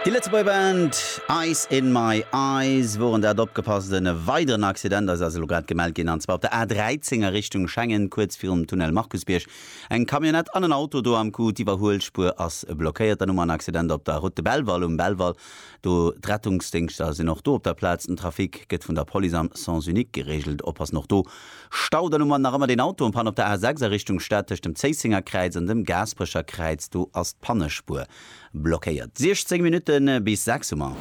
Déi Lëtzebuerger Band Ice In My Eyes woren dat. Opgepasst, en weideren Accident ass elo grad gemellt ginn, an zwar op der A13 a Richtung Schengen, kuerz virum Tunnel Markusbierg. Eng Camionnette an en Auto do am Coup, d'Iwwerhuelspuer ass blockéiert. Dann hu mer en Accident op der Route de Belval, um Belval do. D'Rettungsdéngschter sinn och do op der Plaz. Den Trafic gëtt vun der Police am Sens unique gereegelt. Oppassen och do. Stau, dann hu mer nach ëmmer deen Auto en Panne op der A 6 a Richtung Stad tëscht dem Zéissingerkräiz an dem Gaasperecherkräiz, do ass d'Pannespuer blockéiert. 16 Minutte bis 6 hu mer.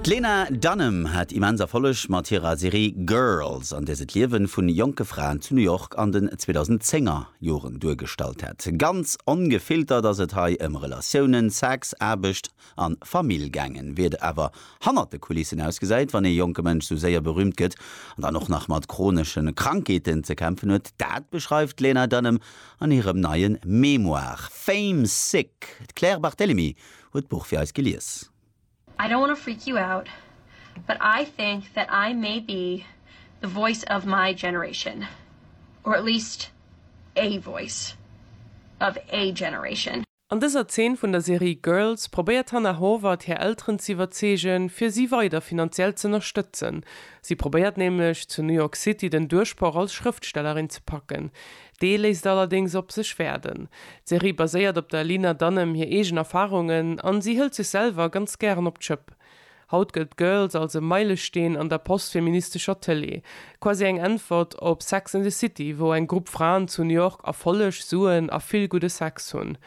D'Lena Dunham hat immens Erfolleg mat hirer Serie Girls, an där se d'Liewen vun jonke Fraen zu New York an den 2010er Joren duergestallt hat. Ganz ongefiltert ass et hei ëm Relatiounen, Sex, Aarbecht, an d'Famill gaangen, wéi et awer hannert de Kulissen ausgesäit, wann ee jonke Mënsch sou séier berühmt gëtt an dann och nach mat chronesche Krankheeten ze kämpfen huet, dat beschreift d'Lena Dunham an hirem neie Memoire Fame Sick. D'Claire Barthelemy huet d'Buch fir eis gelies. I don't wanna freak you out, but I think that I may be the voice of my generation, or at least a voice of a generation. An dëser Zeen vun der Serie Girls probéiert d'Hannah Horvath hir Elteren ze iwwerzeegen, fir si weider finanziell z'ënnerstëtzen. Si probéiert nämlech, zu New York City den Duerchbroch als Schrëftstellerin ze packen. Dee léisst allerdéngs op sech waarden. D'Serie baséiert op der Lena Dunham hir eegen Erfarungen an si hëlt sech selwer ganz gären op d'Schëpp. Haut gëllt Girls als e Meilesteen an der postfeministescher Tëlee, quasi eng Äntwert op Sex and the City, wou eng Grupp Fraen zu New York Erfolleg, Suen a vill gudde Sex hunn.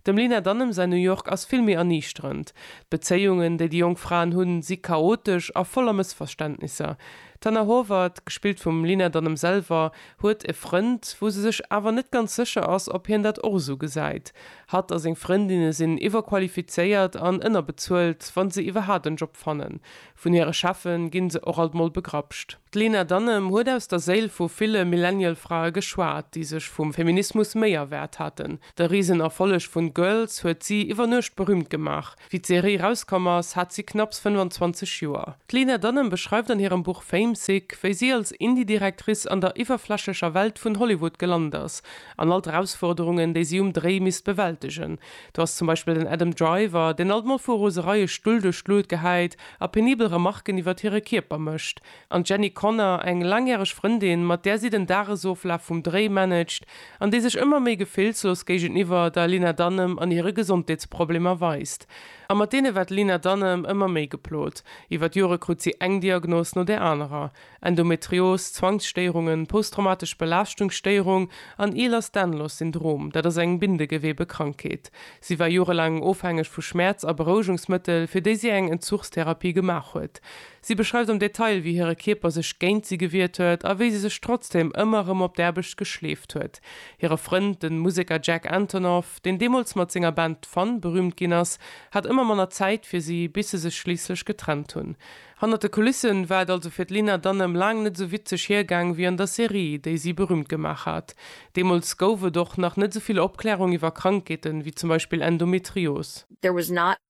Dem Lena Dunham säin New York ass vill méi erniichterend. D'Bezéiungen, déi déi jonk Fraen hunn, si chaotesch a voller Mëssverständnisser. D'Hannah Horvath, gespillt vum Lena Dunham selwer, huet e Frënd, wou se sech awer net ganz sécher ass, ob hien dat och esou gesäit. Hatt a seng Frëndinne sinn iwwerqualifizéiert an ënnerbezuelt, wa se iwwerhaapt en Job fannen. Vun hire Cheffe ginn se och alt mol begrapscht. D'Lena Dunham huet aus der Séil vu ville Millennial-Frae geschwat, déi sech vum Feminismus méi erwaart haten. De Risenerfolleg vun Girls huet si iwwer Nuecht berüümt gemaach. Wéi d'Serie rauskomm ass, hat si knapps 25 Joer. D'Lena Dunham beschreift an hirem Buch Famesick, wéi si als Indie-Directrice an der iwwerflächlecher Welt vun Hollywood gelant ass an all d'Erausforderungen, déi si um Dréi misst bewältegen. Do ass zum Beispill den Adam Driver, deen alt mol vu Rosereie Stull duerch d'Luut gehäit a penibel Remarken iwwert hire Kierper mécht. An d'Jenny Connor, eng laangjäreg Frëndin, mat där si den Dagesoflaf vum Dréi managt an déi sech ëmmer méi gefillslos géigeniwwer der Lena Dunham an hire Gesondheetsproblemer weist. A mat deene war d'Lena Dunham ëmmer méi geplot. Iwwer d'Jore krut si eng Diagnos no där anerer, Endometrios, Zwangsstéierungen, posttraumatesch Belaaschtungsstéierung an Ehlers-Danlos-Syndrom, dat ass eng Bindegewebekrankheet. Si war jorelaang ofhängeg vu Schmäerz a Berouegungsmëttel, fir déi si eng Entzugstherapie gemaach huet. Si beschreift am Detail, wéi hire Kierper sech géint si gewiert huet a wéi si sech trotzdeem ëmmer erëm op d'Aarbecht geschleeft huet. Hire Frënd, de Museker Jack Antonoff, deen deemools mat senger Band Fun berüümt ginn ass, hat ëmmer manner Zäit fir si, bis se sech schliisslech getrennt hunn. Hannert de Kulissen war et also fir d'Lena Dunham laang net esou witzeg hiergaang wéi an der Serie, déi si berüümt gemaach hat. Deemools gouf et och nach net esou vill Opklärung iwwer Krankheeten, wéi zum Beispill Endometrios. There was not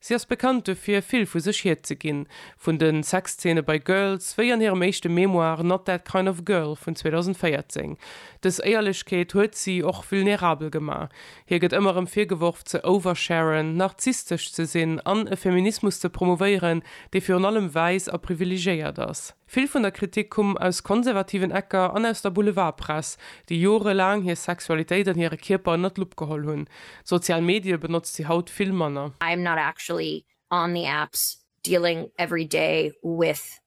Si ass bekannt dofir, vill vu sech hierzeginn, vun de Sexzeene bei Girls, wéi an hirem éischte Memoir Not That Kind Of Girl vun 2014. Dës Éierlechkeet huet si och vulnerabel gemaach. Hir gëtt ëmmer erëm virgeworf, ze oversharen, narzisstesch ze sinn an e Feminismus ze promouvéieren, dee virun allem wäiss a privilegéiert ass. Vill vun der Kritik kumm aus konservativen Ecker an aus der Boulevardpress, déi jorelaang hir Sexualitéit an hire Kierper ënnert d'Lupp geholl hunn. D'sozial Medie benotzt si haut vill manner. I am not actually on the apps dealing every day with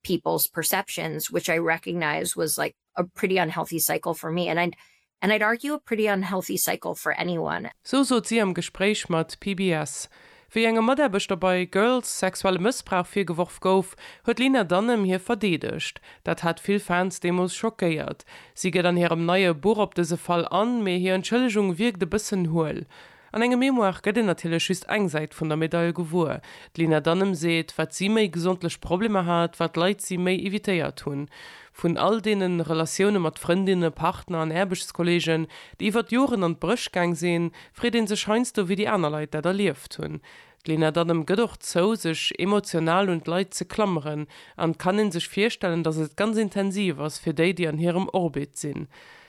people's perceptions, which I recognize was like a pretty unhealthy cycle for me and and I'd argue a pretty unhealthy cycle for anyone. Sou sot si am Gespréich mat PBS. Wéi engem Mataarbechter bei Girls sexuelle Mëssbrauch virgeworf gouf, huet d'Lena Dunham hie verdeedegt. Dat hat vill Fans deemools schockéiert. Si geet an hirem neie Buch op dëse Fall an, mee hir Entschëllegung wierkt e bëssen huel. An engem Memoire gëtt een natierlech just eng Säit vun der Medail gewuer. D'Lina Dunham seet, wat si méi gesondlech Problemer hat, wat Leit si méi evitéiert hunn. Vun all deene Relatioune mat Frëndinne, Partner an Aarbechtskolleegen, déi iwwert Joren an d'Bréch gaang sinn, freet ee sech heiansdo, wéi déi aner Leit dat erlieft hunn. D'Lena Dunham gëtt och zou, sech emotional un d'Leit ze klammeren, an et kann een sech virstellen, datt et ganz intensiv ass fir déi, déi an hirem Orbit sinn.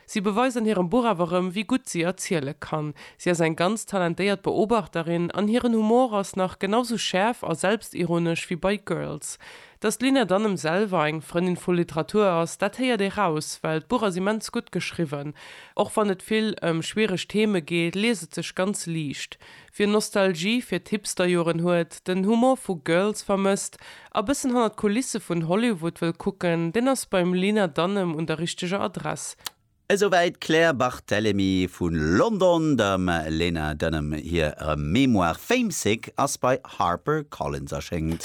Si beweist an hirem Buch awer erëm, wéi gutt si erziele kann. Si ass eng ganz talentéiert Beobachterin, an hiren Humor ass nach genau sou schäerf a selbstironesch wéi bei Girls. Datt d'Lena Dunham selwer eng Frëndin vu Literatur ass, dat héiert ee raus, well d'Buch ass immens gutt geschriwwen. Och wann et vill ëm schwiereg Theme geet, liest et sech ganz liicht. Wien Nostalgie fir d'Hipsterjoren huet, den Humor vu Girls vermësst a bëssen hannert d'Kulisse vun Hollywood wëll kucken, deen ass beim Lena Dunham un der richteger Adress. Esouwäit d'Claire Barthelemy vu London. Dem Lena Dunham hir Memoir Famesick ass bei Harper Collins erschéngt.